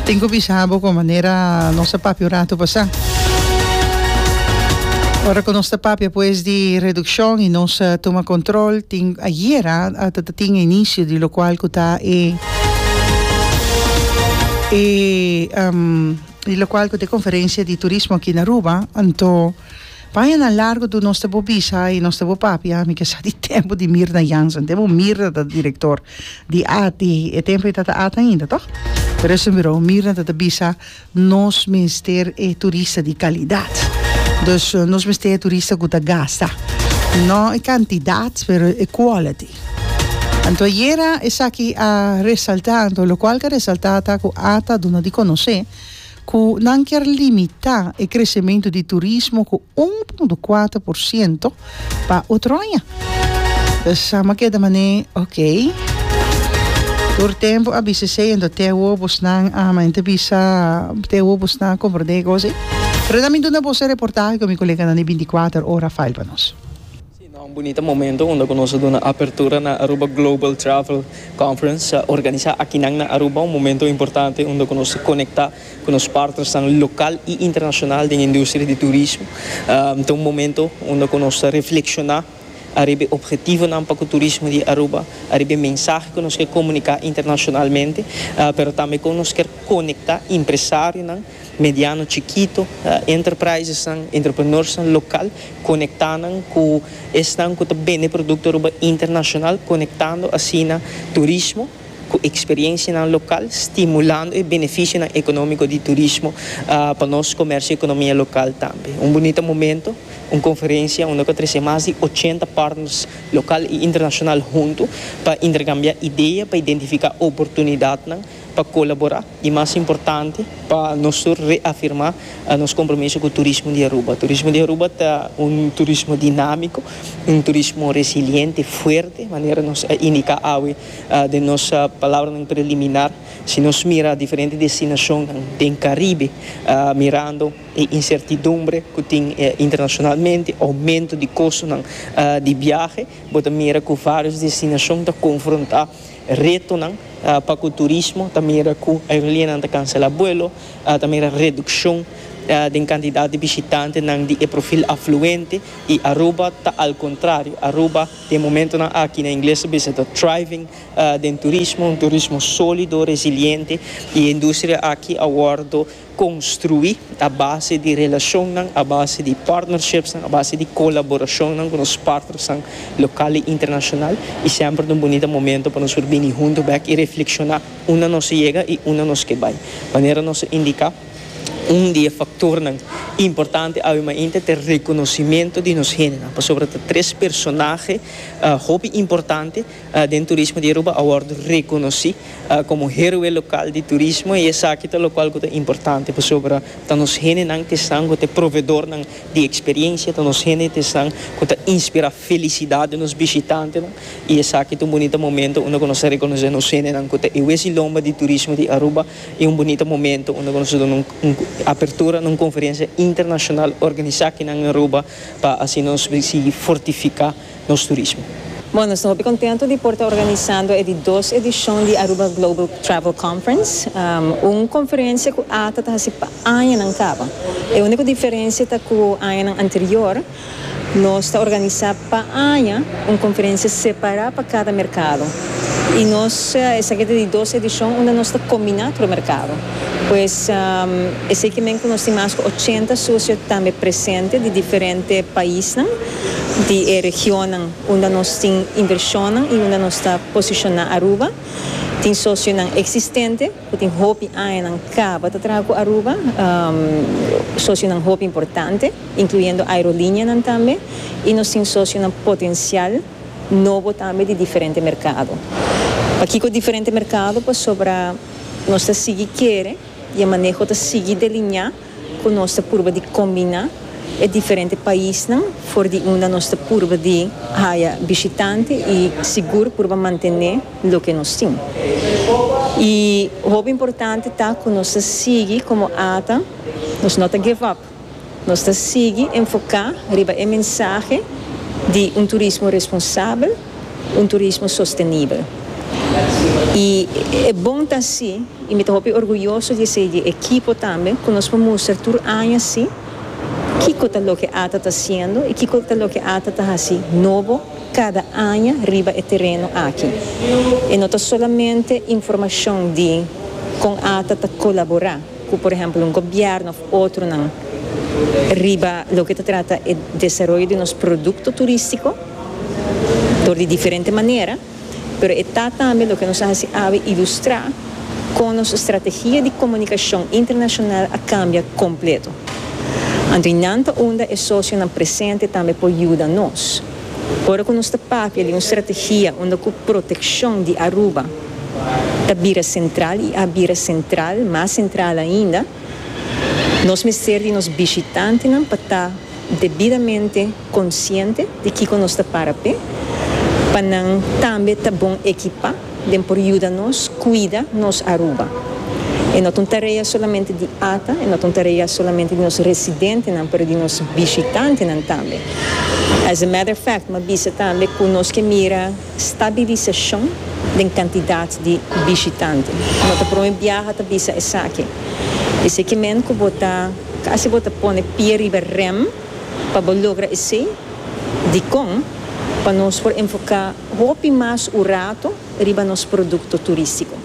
Tin cu bisa bo cu manera nos a papia un ratu pasá. Ora cu nos ta papia pues di reduccion y nos a tuma control, tin, ayer a tatin e inicio di locual cu ta e, e locual cu ta e conferencia di turismo aki na Aruba, anto. Paña nan largo do nos ta bo bisa i nos ta bo papia mi ke sa di tempu di Mirna Jansen tempu Mirna ta direktor di at i e tempu ei tata at ainda toh pero esei mirou Mirna tata bisa nos mester e turista di kalidat dus nos mester e turista ku ta gasta no e kantidat pero e quality anto ayera esaki a resalta anto lokual ke a resalta ta ku at a duna di konosé cu nan kier limita e crecemento di turismo cu un punto cuater por ciento pa otroaña. Ta sama keda manera ok. Tur tempo a bisa esey ento te wobos nan a mente bisa te wobos nan a comprende e cos ey. Pero nan mi duna boso e reportahe cu mi coleganan di binticuater ora fail pa nos. Si no, un bunita momento unda cu nos a duna apertura na Aruba Global Travel Conference, organisa akinan na Aruba, un momento importante unda cu nos a conecta cu nos partnersnan local y internacional den e industria di turismo. Ta un momento unda cu nos ta reflexiona ariba e objetivonan pa cu turismo di Aruba, ariba e mensahe cu nos kier comunica internacionalmente, pero tambe con nos kier conecta empresarionan mediano chikito enterprisesnan, entrepreneursnan lokal, konekta nan ku esnan ku ta bende produkto Aruba internashonal, konektando asina turismo ku eksperiensianan lokal, stimulando e benefisionan ekonómiko di turismo pa nos komèrsio i ekonomia lokal tambe. Un bunita momento, un konferensia unda ku a trese mas di ochenta partners lokal i internashonal huntu pa interkambiá idea, pa identifiká oportunidatnan pa kolaborá. I mas importante, pa nos tur reafirmá nos kompromiso ku turismo di Aruba. Turismo di Aruba ta un turismo dinámiko, un turismo resiliente, fuerte, manera nos a indiká awe den nos palabranan preliminar. Si nos mira diferente destinashonnan den Karibe, mirando e insertidumbre ku tin internashonalmente, oumentu di kostonan di biahe, bo ta mira ku vários destinashon ta konfrontá. Retonan pa ku turismo ta mira ku aerolineanan ta kansela buelo, ta mira redukshon den kantidat di bishitantenan di e profil afluente i Aruba ta al kontrario, Aruba den momentonan aki na ingles ta bisa ta thriving den turismo, un turismo solido, resiliente i e industria aki a wòrdu. Konstruí a base di relashonnan, a base di partnershipsnan, a base di kolaborashonnan ku nos partnersnan lokal i internashonal i semper ta un bunita momento pa nos por bini huntu bèk i reflekshoná unda nos a yega i unda nos ke bai. Manera nos a indiká, un di e faktornan importante awe mainta ta e rekonosimentu di nos hendenan, pasobra ta tres personahe hopi importante. den turismo di Aruba a wòrdu rekonosí komo héroe lokal di turismo i esaki ta lokual ku ta importante pasobra ta nos hendenan ku esnan ku ta e provedornan di eksperiensia, ta nos hende ta esnan ku ta inspirá felisidat den nos bishitantenan i esaki ta un bunita momento unda ku nos ta rekonosé nos hendenan ku ta e wes i lomba di turismo di Aruba i un bunita momento unda ku nos ta duna un apertura na un konferensia internashonal organisá aki nan Aruba pa asina nos sigui fortifiká. nos turismo. Bon, nos ta hopi contento di por ta organisando e di dos edicion di Aruba Global Travel Conference, un conferencia cu ata ta haci pa añanan caba. E unico diferencia ta cu añanan anterior nos ta organisa pa aña un conferencia separa pa cada mercado y nos esaki ta di dos edicion unda nos ta combina tur mercado. Pues esey kimen cu nos tin mas cu ochenta socio tambe presente di diferente paisnan. di e regionnan unda nos tin inversionnan y unda nos ta posiciona Aruba. Tin socionan existente cu tin hopi añanan caba ta traha cu Aruba, socionan hopi importante, incluyendo aerolinianan tambe, y nos tin socionan potencial nobo tambe di diferente mercado. Pakico diferente mercado? Pasobra nos ta sigui kere y e maneho ta sigui delinea. ku nos ta purba di kombiná e diferente paisnan for di unda nos ta purba di haya bishitante i sigur purba mantené loke nos tin. I hopi importante ta ku nos ta sigui komo ata, nos no ta give up, nos ta sigui enfoká riba e mensahe di un turismo responsabel, un turismo sostenibel. I e bon ta si i mi ta hopi orguyoso di esei di ekipo tambe ku nos por mustra tur aña si kiko ta loke ata ta siendo i kiko ta loke ata ta hasi nobo kada aña riba e tereno aki. E no ta solamente informashon di kon ata ta kolaborá. cu por ehemplo un gobierno of otronan riba loke ta trata e desaroyo di nos producto turistico dor di diferente manera, pero e ta tambe loke nos a haci awe ilustra con nos strategia di comunicacion internacional a cambia completo. Anto y nan ta unda e socionan presente tambe por yuda nos. Ora cu nos ta papia di un strategia unda cu proteccion di Aruba, ta bira sentral i a bira sentral, mas sentral ainda, nos mester di nos bishitantenan pa ta debidamente konsiente di kiko nos ta para p'e, pa nan tambe ta bon ekipá den por yuda nos kuida nos Aruba. E no ta un tarea solamente di ata, e no ta un tarea solamente di nos residentenan, pero di nos bishitantenan tambe. As a matter of fact, mi a bisa tambe ku nos ke mira. Stabilisacion den cantidad di bishitante. No ta prome biaha ta bisa esaki. Eseki men cu bo ta casi bo ta pone pie riba rem pa bo logra esey, dicon pa nos por enfoca hopi mas urato riba nos producto turistico.